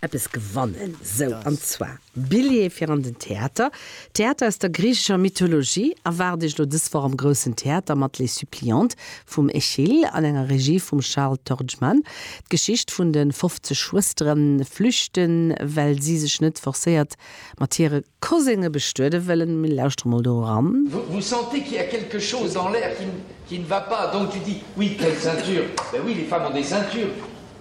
eppes gewannen, sou an zwar Billjet fir an den Theater. Theater aus der griichescher Mythologie erwaart Iech elo dës Woch am Groussen Theater mat Les Suppliantes vum Eschyl an enger Regie vum Charles Torgmann. D'Geschicht vun de 50 Schwëstere flüchten, well si sech net forcéiert mat hire Cousine bestuede wëllen. Mir lauschtere mol do eran. Vous sentez qu'il y a quelque chose dans l'air qui ne va pas donc tu dis oui quelle ceinture ben oui les femmes ont des ceintures.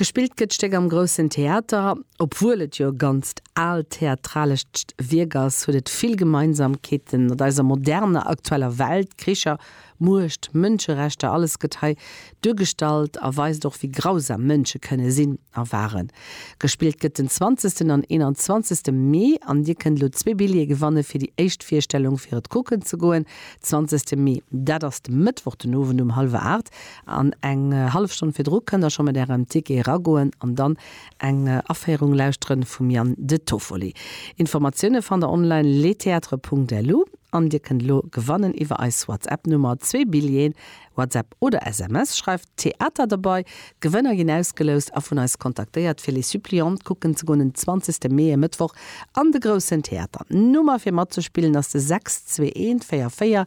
Gespillt gëtt d'Stéck am Groussen Theater. Obwuel et jo e ganzt aalt theatralescht Wierk ass, huet et vill Gemeinsamkeete mat eiser moderner, aktueller Welt, Kricher, Muecht, Mënscherechter, alles gëtt hei duergestallt a weist och, wéi grausam Mënsche kënne sinn a waren. Gespillt gëtt den 20 an 21 Mee an Dir kënnt elo zwee Billjeeë gewanne fir déi éischt Virstellung, fir et kucken ze goen. 20 Mee, dat ass de Mëttwoch den Owend um hallwer 8. An eng hallef Stonn virdru kënnt der scho mat ärem Ticket eragoen an dann eng Aféierung lauschteren vum Yann De Toffoli. Informatioune fannt der online letheatre.lu an dir kënnt elo gewannen iwwer eis WhatsApp-Nummer zwee Billjeeën, WhatsApp oder SMS, schreift Theater derbei. D'Gewënner ginn ausgeloust a vun eis kontaktéiert fir Les Suppliantes kucken ze goen en 20 Mee, e Mëttwoch, an de Groussen Theater. Nummer fir matzespillen ass de 6 2 1 4 4